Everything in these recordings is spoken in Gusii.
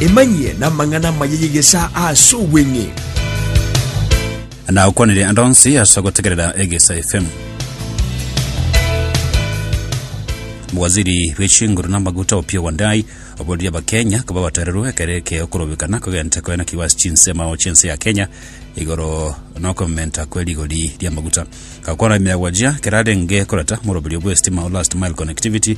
Emanyie namang'ana amaya y'egesaa ase obweng'e. Nagokwanire ande onsi ase ogotegerera Egesa FM. Waziri bw'echinguru na amaguta Opiyo Wandayi oborerie Abakenya koba abatereru ekero eke okorobekana kogenta koena kiwa ase chinsemo chi'ense ya Kenya igoro nokomenta kwe rigori ri'amaguta. Gakwana ime ya gwachia kerarenge koreta moroberio bw'esitima o last mile connectivity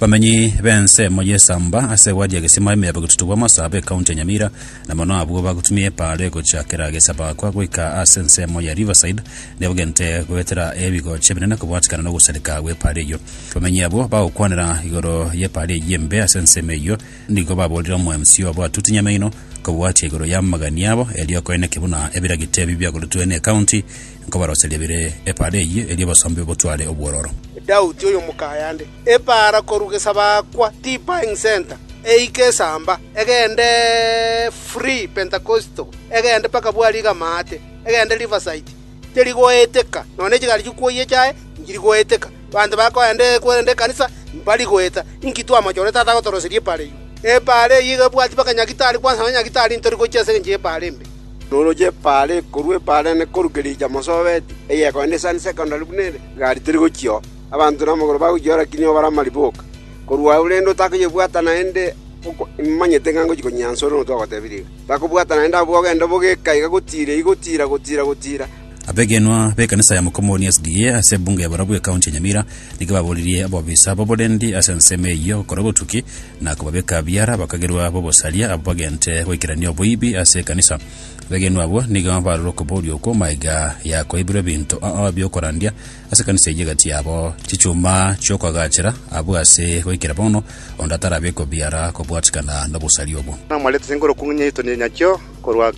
Bamenyi b'ensemo y'esamba ase gwaria egesima emeyabo getutu bwa Masaaba ekaunti ya Nyamira na mono abwo bagotumia epaaro egochakera Gesabakwa goika ase ensemo ya Riverside nigo bagente goetera ebigocha ebinene kobwatikana nogosareka gw'epaaro eyio. Bamenyi abwo bagokwanera igoro y'epaaro eyio embe ase ensemo eyio nigo baborire omomc obo Atuti Nyamaino kobwatia igoro y'amagani abo erio koeneke buna ebiragita ebi biagoretwe n'ekaunti nkobaroseria bire epaaro eyio erio obosombe botware obwororo. Daudi, oyomokaya nde, Epaara korwa gesabaakwa tipaing senta eike esamba, egende free pentakosto, egende mpaka bwariga amaate, egende rivasaiti, teri goeteka, nonya ne chigari chikwoyia chiaye nchiri goeteka. Banto bakoenda korende ekanisa mbari goeta. Inki twamachore Tata agotoroseria epaara eyio? Epaara eyio iga ebwati mpaka nyagitari kwansa nonya nyagitari ntori gochia ase engencho y'epaara embe. Roroche epaara ekorwa epaara ene korwa kericha mosobeti, egekoenda esani secondary buna ere, igari teri gochia oo. Abanto namagoro bagochia ore kinya obare amariboka. Korwa agwo rende otakoyebwata naende imanyete ng'a ngochia konyia anse ore nonya ogotebirie iga. Takobwata naende abwo ogende obogeka iga gotiira iga gotiira gotiira gotiira. Abegenwa b'ekanisa ya Mukomooni SDA ase ebunge ya barabwo ekaunti ya Nyamira nigo baboririe abobisa b'oborendi ase ensemo eyio gokora obotuki na kobabeka biara abakagerwa b'obosaria abwo bagente goikerania oboibi ase ekanisa. Abegenwa abwo nigo barorire okoboria okwo magega ya koibirwa ebinto bi'okorandia Ase ekanisa eyio egati yabo chichuma chi'okoagachera, abwo ase goikera bono onde atarabe kobiara kobwatikana nobosari obwo. Namarete ase enkorokwa ng'a nyaito nyachio korwa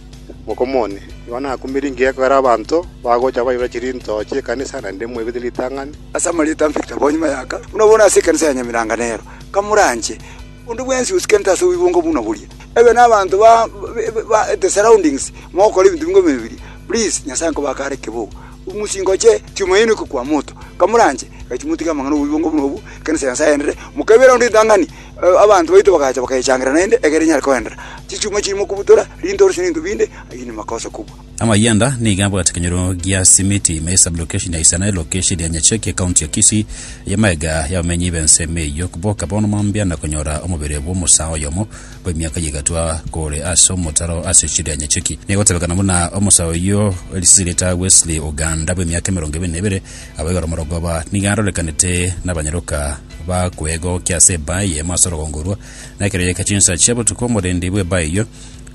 mokomo one. Igo nakumire ingiya ekogera abanto bagocha baibera chirinto chi'ekanisa naende moibete ritang'ani. Ase amarieta mbete abwo nyuma y'aka, buna bono ase ekanisa ya Nyamiranka nero, kamoranche onde bwensi osikerete ase oboibongo buna boria, ebe nabanto ba the surroundings mogokora ebinto bingoma ebiya, please Nyasaye nkobake are keboko. Ng'usie ngoche Tumaini oko kwa Moto, kamoranche, erio timotiga amang'ana 'obobe bwango buna obo, ekeene Sayansi agenderere. Mokaibera rende ritang'ani, abanto baito bagacha bakayechangerera naende, ekiagera enyare koenderera. Chichuma chirimo kobutora, rinto orosio n'ebinto binde, ayio nemakosa kobua. Amayanda nigo abwate ekenyoro gia Simiti ime ye Sub-location ya Isana, elocation ya Nyacheke, County ya Kisii, eye amaega y'abamenyi b'ensemo eyio boka bono mambia na konyora omobere bw'omosaa oyomo bw'emiaka eye egatwa kore ase omotaro ase chiria nyecheki. Negotebekana buna omosa oyio Elizirita Wesley Oganda bw'emiaka emerongo ebere na ebere, abaibare omorogoba nigo arorekanete nabanyaroka ba kwegokia ase ebaa eyemo ase orogongo orwo, na ekero yaika chinsa chia botuko omorendi bw'ebaa eyio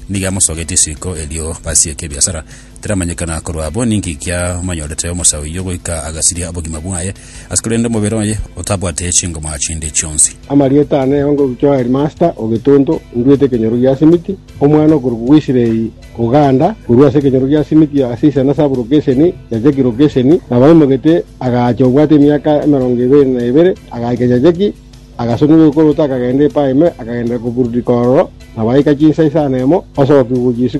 nigo amosogetie isiko erio basieke ebiasara. Tiramanyekana korwa abwo ninki kiamonyorete omosa oyio goika agasiria obogima bwaye, ase korende omobere oye otabwate chingoma chinde chionsi. Amarieta ane onge ogochia o Headmaster o Getuntu, nduete ekenyoro gia simiti, omwana okorokwa Israeli Oganda, korwa ase ekenyoro gia simiti ase isana sub lokesheni Nyacheki lokesheni, nabaimogete agaacha obwate emiaka emerongo ebere na ebere, agaika Nyacheki, agasonigwa ekoroto akagenda epaime, akagendera kobururika ororo, nabaika chinsa isano emo, osoka kigwa gochia isiko,